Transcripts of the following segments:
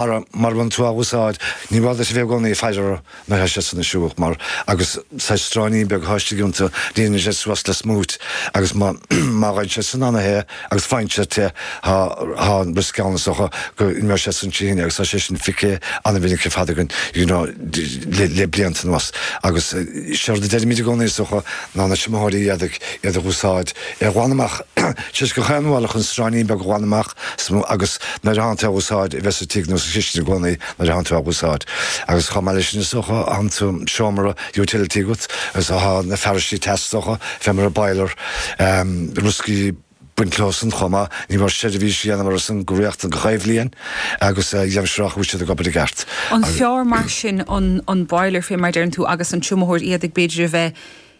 Ara, mar a bhain tú úsáid, ní mór duit a bheith i gcónaí ag faire air is a dhéanamh siúrálach, mar agus saghas stráinín beag istigh iontu, líonann siad suas le smúit, agus má fhaigheann siad soin ann é, agus faigheann siad te, tá an riosc ann, is dócha go n-imeoidh sé soin trí thine, agus tá sé sin feicthe an-mhinic ar fad againn, you know, le blianta anuas. Agus séard a deirimid i gcónaí, is dócha, ná na triomaitheoirí éadaigh, iad a úsáid, é a ghlanadh amach, tar éis gach aon bhuille, chun stráinín beag a ghlanadh amach, Sm, Agus nuair atánn tú á úsáid, a bheith sa tigh nó sa chistin i gcónaí nuair atánn tú á úsáid. Agus chomh maith leis sin is dócha tá an seomra utility agat agus tá na fearaistí teas is dócha, fé mar an boiler, em, rioscaí ag baint leo san chomh maith. Ní mór seirbhís a dhéanamh orthu san go rialta gach aon bhliain agus a dhéanamh siúrálach go bhfuil siad ag obair i gceart. An fearr mar sin an an boiler fé mar a deireann tú agus an triomaitheoir éadaigh b'fhéidir a bheith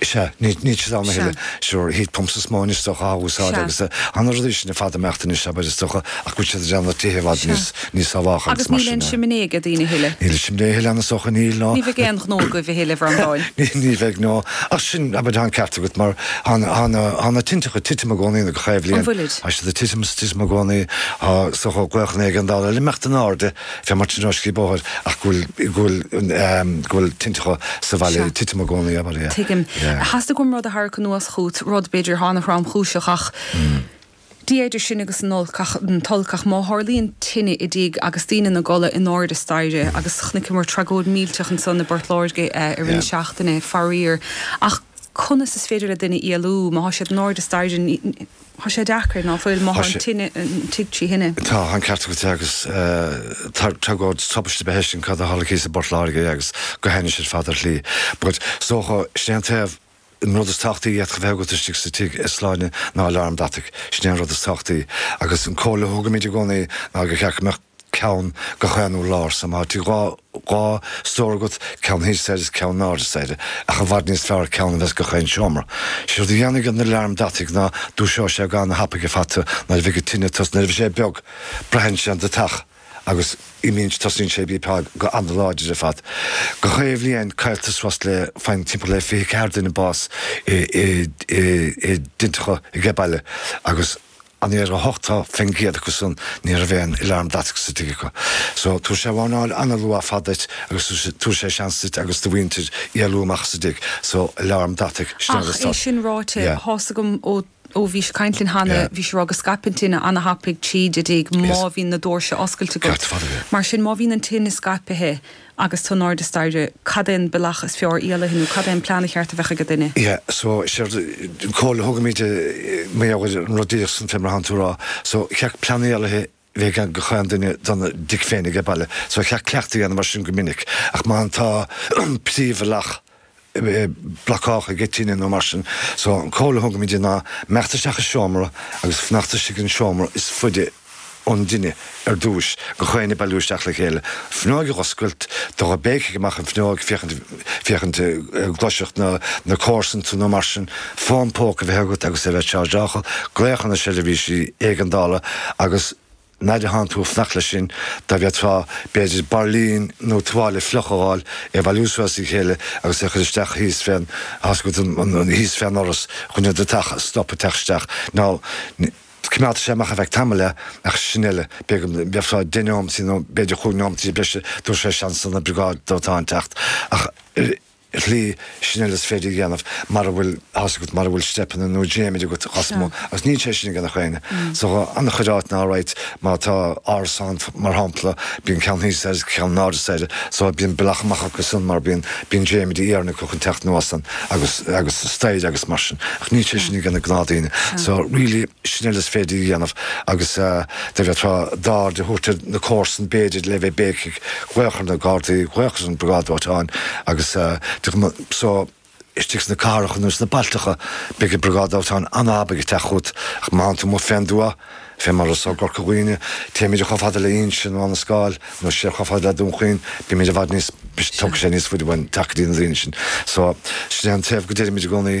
Sea, níl siad ann a thuilleadh. Sure, heat pumps is mó anois is dócha á úsáid agus tá na rudaí sin ar fad ag imeacht anois, abair, is dócha, ach bíonn siad ag déanamh tithe i bhfad níos sábhálacha agus mar sin de. Agus níl aon simné ag daoine a thuilleadh. Níl aon simné a thuilleadh ann is dócha, níl, ná. Ní bheidh aon ghnó agaibh a thuilleadh, a Bhreandáin. Ní bheidh, no. Ach sin, abair, tá an ceart agat mar tá na tinteacha ag titim i gcónaí nó gach aon bhliain. An bhfuilid? Tá siad ag titim is ag titim i gcónaí, so tá glaochanna éigeandála ag imeacht in airde. Fé mar tionóiscí bóthair ach go bhfuil, go bhfuil, go bhfuil tinteacha sa bhaile ag titim i gcónaí abair, yeah. Tuigim. Theastaigh uaim rud a tharrac anuas chugat, rud, b'fhéidir, atá an-thromchúiseach ach. Dia idir sinn agus an olc, ach, an t-olc, ach má tharlaíonn tine i dtigh agus daoine ina gcodladh in airde staighre, agus chonaiceamar tragóid millteach ansan i bPort Láirge i rith na seachtaine, faraor, ach conas is féidir le duine éalú má tá siad in airde staighre? Tá sé deacair, ná fuil, má tá an tigh trí thine. Tá, tá an ceart agat agus tá tragóid tubaiste a bheith ag éisteacht le cad a tharla thíos i bPort Láirge agus go hainnis ar fad ar shlí. But, is dócha, sin é an taobh, an rud is tábhachtaí a fhéadfadh a bheith agat istigh sa tigh is sláine ná aláram deataigh. Sin é an rud is tábhachtaí. Agus an comhairle a thugaimid i gcónaí ná gur cheart go mbeadh. ceann gach aon urlár, so má tá tigh dhá stór agat, ceann thíos staighre is ceann in airde staighre, ach i bhfad níos fearr ceann a bheith ins gach aon seomra. Sé rud a dhéanfaidh an alarm deataigh ná dúiseoidh sé go an-thapaidh ar fad tú nuair a bheidh an tine ag tosnú. Nuair a bheidh sé beag, braitheann sé an deatach agus imíonn tosaíonn sé ag bípeáil go an-láidir ar fad. Gach aon bhliain cailltear suas le faigheann timpeall le fiche ceathair duine bás i dtinteacha age baile agus. anuraidh 80% acu san ní raibh aon alarm deataigh sa tigh acu. So tabharfaidh sé wárnáil an-luath ar fad duit agus tabharfaidh sé seans duit agus do mhuintir éalú amach as an dtigh. So alarm deataigh, sure Ach é sin ráite, yeah. tá a fhios agam ó, ó bhís ag caint linn cheana, Yeah. bhís ag rá go scaipeann tine an-thapaidh tríd an dtigh má Yes. bhíonn na dóirse oscailte agat. Ceart ar fad, yeah. Mar sin má bhíonn an tine scaipithe, agus tú in airde staighre, cad é an bealach is fearr éalaithe nó cad é an plean cheart a bheith ag an duine. Yeah, so, sí an chomhairle a thugaimíd i mBéarla ar an rud díreach san fé mar atánn tú a rá. So, cheart plean éalaithe a bheith ag gach aon duine dona dtig féin aige baile. So, cheart cleachtadh a dhéanamh air sin go minic. Ach má tá an príomhbhealach. blockálta aige tine nó mar sin. So an comhairle a thugaimid ná imeacht isteach i seomra agus fanacht istigh, an seomra is faide ón dtine ar dtúis, gach éinne bailiú isteach le chéile. Fuinneog a dh'oscailt, dul ag béicigh amach an fuinneoig, féachaint, féachaint an gcloisfeadh na comharsain tú nó mar sin, fón póca a bheith agat agus é a bheith chargeálta, glaoch ar na seirbhísí éigeandála agus. Nuair atánn tú ag fanacht leis sin, dá bhféadfá, b'fhéidir bairlín nó tuáille fliuch a fháil, é a bhailiú suas as a chéile agus é a chur isteach thíos fén, tá a fhios agat, thíos fén doras, chun an deatach a stop ag teacht isteach. Now, coimeádfaidh sé amach ar feadh tamaill é, ach sin uile, b'fhéidir go bhfaighfeá deich nóimintí nó b'fhéidir chúig nóimintí breise, tabharfaidh sé seans don briogáid dóiteáin teacht, ach, Really, sin uile is féidir a dhéanamh mara bhfuil a fhios agat, mara bhfuil steipeanna nó dréimire agat Cosmo, agus níl sé sin ag gach éinne. So an-chuid áiteanna alright, má tá árasán mar shampla, bíonn ceann thíos staighre is ceann in airde staighre, so bíonn bealach amach acu san mar bíonn, bíonn dréimirí iarainn acu chun teacht anuas ann agus, agus staighre agus mar sin, ach níl sé sin ag na gnáthdhaoine. So really. sin uile is féidir a dhéanamh agus dá bhféadfá d'aird a thabhairt ar na comharsan b'fhéidir le bheith ag béicigh glaoch ar na gardaí glaoch ar an briogáid dóiteáin agus so istigh sna cathracha nó sna bailteacha beidh an briogáid dóiteáin an-thapaidh ag teacht chugat ach má fhanann tú amuigh fén dtuath fé mar atá i gCorca Dhuibhne téimid chomh fada le hInse nó Abhainn an Scáil nó siar chomh fada le Dún Chaoin bímid i bhfad níos tógfaidh sé níos fuide uainn teacht go dtí na daoine sin so sin é an taobh go deirimid i gcónaí.